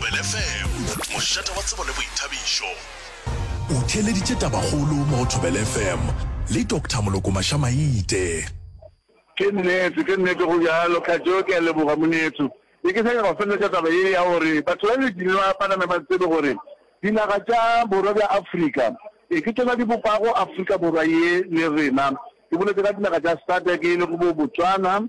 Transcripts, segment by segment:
Kwele FM, mošate wa tsebo le boithabišo. O theeleditše tabakgolo mo go Thobela FM le Doctor Moloko Mašamaite. Ke nnete, ke nnete go bjalo. Khajo, ke a leboga monetho. Ne ke sa nyaka go feleletša taba ye ya gore batho ba le dinwa ba name ba tsebe gore dinaga tša borwa bja Afrika e ke tšona di bopago Afrika Borwa ye le rena. Ke boletše ka dinaga tša SADC e lego bo Botswana,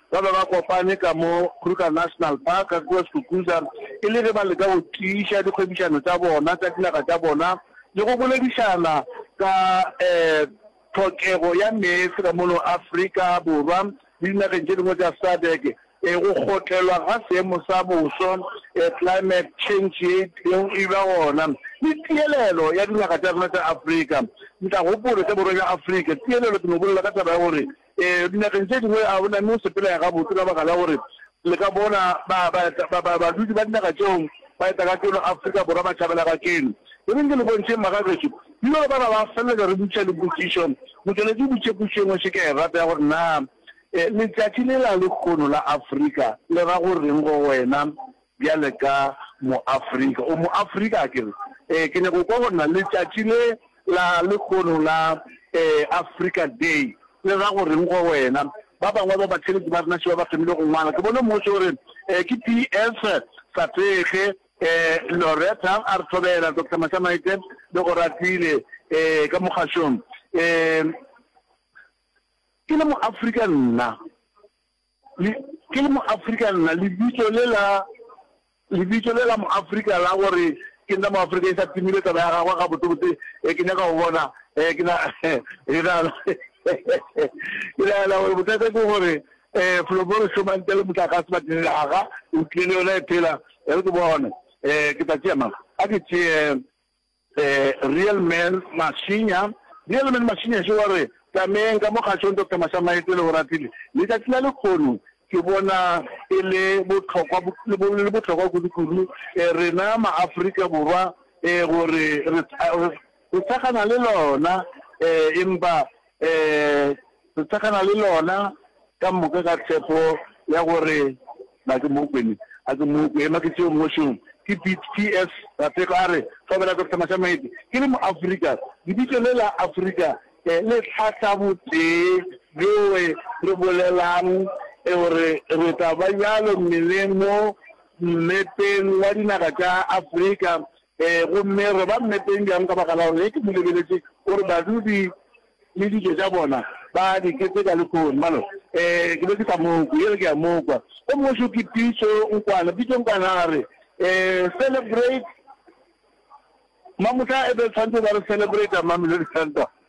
Ba be ba kopane ka mo Kruger National Park, kua Skukuza, e le ge ba leka go tiiša dikgwebišano tša bona tša dinaga tša bona le go boledišana ka tlhokego ya meetse ka mono Afrika Borwa le dinageng tše dingwe tša SADC. Go kgotlelwa ga seemo sa boso, climate change, ye e tlilego e ba gona le tielelo ya dinaga tša rena tša Afrika. Ntlagopolo tša Borwa bja Afrika, tielelo, ke no bolela ka taba ya gore Ee, dinageng tše dingwe a o na mme o sepelega gabotse ka baka la gore le ka bona ba, ba, ba, ba, badudi ba dinaga tšeo ba eta ka keno Afrika Borwa ba tšhabela ga keno. Le be nke le bontšheng magagešo, bjalo bana ba feleletša re butša le potšišo, motšweletši butše potšišo engwe še ke e rata ya gore naa, e, letšatši lela lekgono la Afrika le ra go reng go wena? Bjale ka mo-Afrika, o mo-Afrika akere? Ee, ke nyaka go kwa go na le tšatši le la lekgono la, ee, Afrika Day, le ra go reng go wena. Ba bangwe ba batheeletši ba rena še ba ba thomile go ngwala. Ke bone motse o re, ee, ke PS. Satege, ee, Loretta a re thobela, Doctor Mashamaite le go ratile, ee, ka mo kgašong. Ee, ke le mo-Afrika nna, Le, ke le mo-Afrika nna, lebitso le la, lebitso le la mo-Afrika la gore ke nna mo-Afrika e sa timile taba ya gagwe gabotsebotse. E, ke nyaka go bona, e, ke na, ke na, ke nagana gore bothata ke gore, e, Floboro Shomante le motlakase ba tlile aga, o tlile le yona e phela, e re ke bone, e, ke tla tšea mang? A ke tšee, Real Man Mashinya Real Man Mashinya še wa re, Tlameng ka mo kgašong Doctor Mashamaetse le Oratile, letšatši la lekgono ke bona e le bohlokwa le bohlokwa kudu-kudu rena ma-Afrika Borwa gore re re re thekgana le lona empa Ee, re tsagana le lona ka moka ka tshepo ya gore na ke mokwene a ke mokwe. Ema ke tšeo mmošong. Ke Pete, PS. Rathego a re hlobela sehlama sa maetsi. Ke le mo-Afrika. Lebitso le la Afrika le hlahla botee bjoe re bolelang gore re tla ba bjalo mmeleng mo mmepeng wa dinaga tša Afrika Ee, gomme re ba mmepeng bjang ka baka la gore ge ke mo lebeletše gore badudi le dijo tša bona ba di keteka lehono, balo, ee, ke be ke sa mo kwe. Yere ke a mo kwa. Gomme go šo ke pitšo nkwana, pitšo nkwana a re, Ee, celebrate, Mamohla e be tshwantse ba re celebrate Mamelodi Sundowns.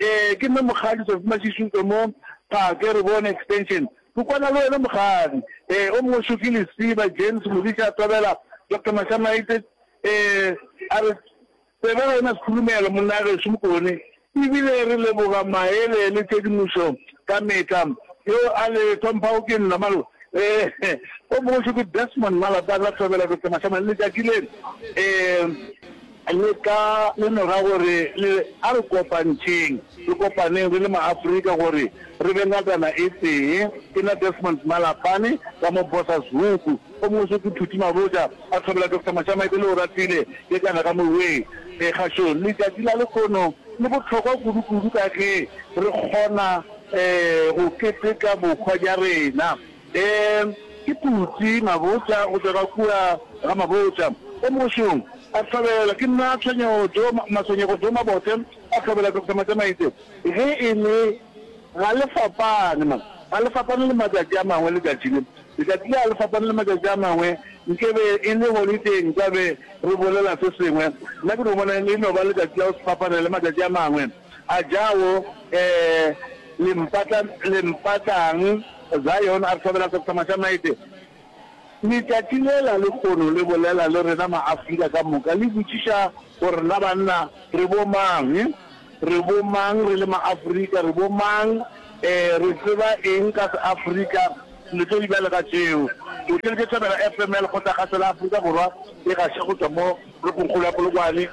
Ee, ke nna Mokgadi Tsatsi Mashishi o tswa mo Phake re bone extension. Ke kwana le wena Mokgadi. Ee, o mongwe Shoki Lesiba, James Modise a tobela Doctor Mashamaitse. Ee, a re tsebe ga e na sekhulumelo monnagešu Mokone e bile re leboga maele le tshedimošo ka metlha. Yo a le tlhomphago ke nna Malo. Ee, o mongwe Shoki Desmond Malapana a tobela Doctor Mashamaitse. Letšatši le. Ee. Le ka lemoga gore le re, A re kopantšheng, re kopaneng re le maAfrika gore re be ngatana e tee. Ke nna Desmond Malapane, ka mo Bosazhuku. O mongwe so ke Phuti Mabotja, a thobela Doctor Mashamae pele o ratile ye kana ka moweng. Kgašong, letšatši la lehono le bohlokwa kudu-kudu ka ge re kgona go keteka bohwa bja rena. Ee, ke putsi, mabotla go tšwa ka kua ga mabotla ka mogošong a hlabela. Ke nna tshwenyego jo, matshwenyego jo mabote a hlabela, Doctor Matšamaitse. Ge e le, ga le fapane, ma, ga le fapane le matšatši a mangwe, letšatši le, letšatši le ga le fapane le matšatši a mangwe. Nkebe e le holidei nkabe re bolela se sengwe. Nna ke no bona e no ba letšatši la go se fapane le matšatši a mangwe. A Jawo, ee, le mpatla, le mpatlang, Zion a re hlobela sekhwama sa maete. Letšatši lela lekgono le bolela le rena Maafrika ka moka, le botšiša gore na banna re bomang, re bomang re le Maafrika, re bomang, ee, re tseba eng ka Seafrika, le tšo di bjalo ka tšeo. O tšweletše Thobela FM ya Lekgotlakgašo la Afrika Borwa e gaše go tšwa mo toropongkgolo ya Polokwane.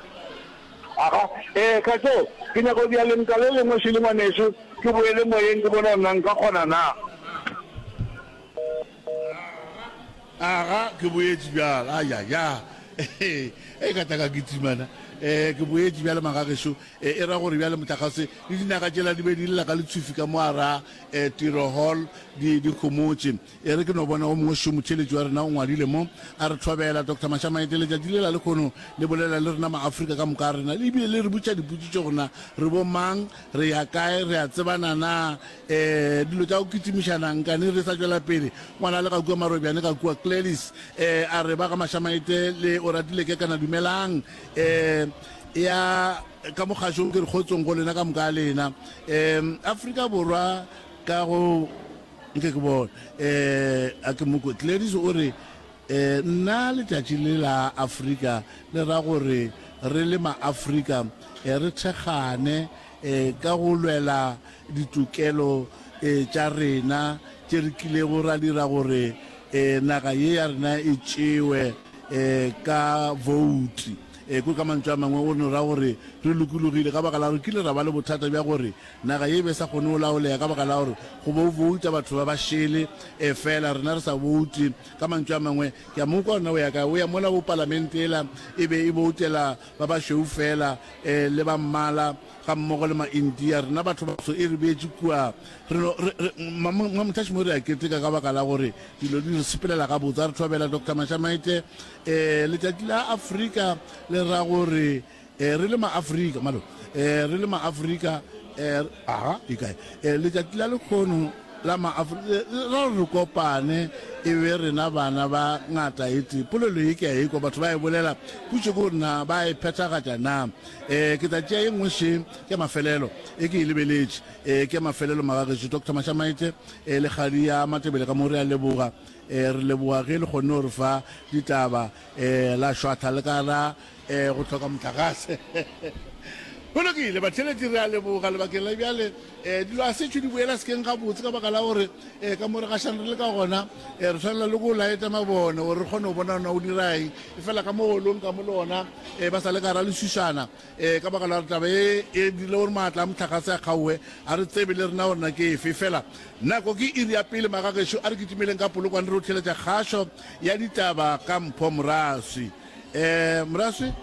Aga, ee, ka tšo, ke nyaka go dira lentwa le lengwe, Shirley ngwanešu, ke boele moyeng ke bone gore na nka kgona na. Aga, ke boetše bjale, ayaya, ee, ka tla ka kitimana, ee, ke boetše bjale, magagešo, ee, e ra gore bjale mohlagase le dinaga tšela di be di lela ka letšhufi ka mo garaa, ee, Tiro Hall, di, di homotše, E re ke no bona o mongwe šo motheeletši wa rena o ngwadile mo, a re thobela, Doctor Mashamaete, letšatši lela lekhono le bolela le rena Maafrika ka moka a rena, le bile le re butša diputsitšo gore na re bo mang, re ya kae, re a tsebana na, ee, dilo tša go kitimiša na, nkane re sa tšwela pele, ngwana le ga kua Marobjane ka kua Clelis, ee, a re ba ga Mashamaete le Oratile ke kana dumelang, ee, ya ka mo kgašong ke re kgotsong go lena ka moka a lena, ee, Afrika Borwa ka go. Nke ke bone. Eh, a ke mo kwe. Gladys o re, Eh, nna letšatši le la Afrika le ra gore re le ma-Afrika eh, re thekgane eh, ka go lwela ditokelo eh, tša rena tše re kilego ra dira gore eh, naga ye ya rena e tšewe eh, ka vouti. Eh, ko ka mantšu a mangwe o no ra gore re lokologile ka baka la gore kile ra ba le bothata bja gore Naga ye e be e sa kgone go laolega ka baka la gore go bo bouta batho ba ba šele, efela rena re sa boutwe. Ka mantšu a mangwe, ke a mo ukwa gore na o ya kae. O ya mola wo Palamente yela e be e boutela ba bašweu feela, ee, le ba mmala gammogo le ma-India. Rena bathobatsho e re beetše kua. Re no, re, re, ma, ma, ma, mothaši mo re a keteka ka baka la gore dilo di re sepelela gabotse. A re thobela Doctor Mashamaite. Ee, letšatši la Afrika le ra gore. Eh, re le maafrika malo eh, re le maafrika eh, aga e kae eh, letšatši la lekgono la maafrika ra re kopane e be rena bana ba ngata ete polelo e ke a ekwa batho ba e bolela putše ko nna ba e phethagatša na eh, ke tla tšea e nngwe še ke mafelelo e ke e lebeletše eh, ke mafelelo magagetši dr mashamaete eh, le kgadi ya matebele ka mo re a leboga eh, re leboga ge le kgonne gore fa ditaba eh, la šwatha le ka ra Ee, go hloka mohlagase. Go lokile, batheletši re a leboga lebakeng la bjale. Um dilo a setšho di boela sekeng gabotse ka baka la gore um ka mo re gašang re le ka gona um re tshwanela le go laeta mabone gore re kgone go bona ona o diraeng e fela ka mo golong ka mo le ona um ba sa le ka ra leswisana um ka baka la gore taba e e dirile gore maatla a motlhagase a kgaowe a re tsebe le rena gore na ke efe fela nako ke iri ya pele magagešo a re kitimeleng ka polokwane re o theletša kgašo ya ditaba ka mpho moraswi eh moraswi.